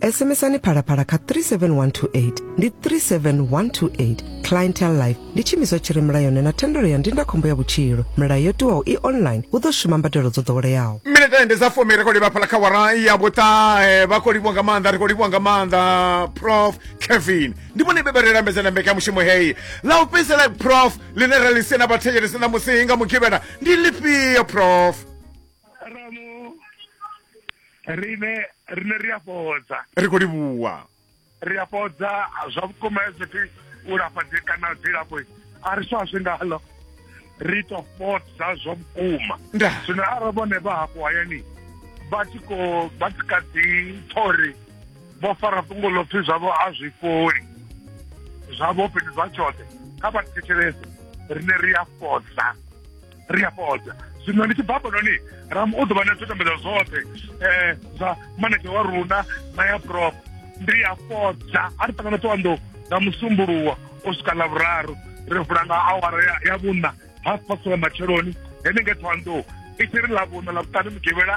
SMSani phalaphala kha 37128 ndi 37128 Clientele Life ndi tshimiswa tshi re mulayoni na thendelo ya ndindakhombo ya vhutshilo. Milayo yo tiwaho i online hu ḓo shuma mbadelo dzo ḓoweleaho. minetende dza fumi ri khou livha phala kha wara ya vhuṱahe vha khou livhiwa nga maanḓa ri khou livhiwa nga maanḓa prof kevin ndi vhone vhe vha ri lambedza na mbekanyamushumo heyi ḽa u fhedzisela prof ḽine ra ḽi sena vhathetshelesi ṋamusi nga mugivhela ndi ḽifhio prof rine rine ri a fhodza ri khou livhuwa ri a fhodza zwa vhukuma hezwo ti u lafha dzi kana dzilafho a ri swa zwi ngalo ri to fhodza zwa vhukuma zwino arali vhone vha hafho hayani vha tshi ko vha tshi ka dzi thori vho fara fhungo ḽo pfhi zwavho a zwi fholi zwavho fhethu zwa tshoṱhe kha vha thetshelese rine ri a fhodza ri a fhodza zwino ndi tshi bva hafhanoni ram u ḓo vha na zwidodombedzwa zwoṱhe um zwa manege wa runa na ya prop ndi a fhodza a ri ṱangana ṱowanḓou nga musumbuluwa u swika ḽa vhuraru ri vula nga awara ya vhuna half past wa matsheloni henenge ṱhowanḓou i tshi ri ḽa vhuna ḽa vhuṱanu mugivhela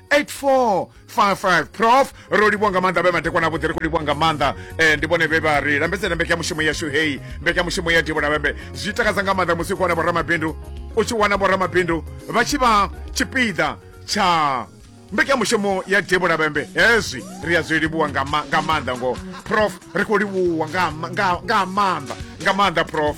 8455 prof ro livhuwa nga maanḓa vhe madekwana avhuḓi ri khou livhuwa nga maanḓa um ndi vhone vhe vha ri lambedzela mbekanyamushumo yashu heyi mbekanyamushumo ya divo lavhembe zwi takadza nga maanḓa musi u khou wana vhoramabindu u tshi wana vhoramabindu vha tshi vha tshipiḓa tsha mbekanyamushumo ya divo lavhembe hezwi ri a zwi livhuwa nga maanḓa ngoho prof ri khou livhuwa nga maanḓa nga maanḓa prof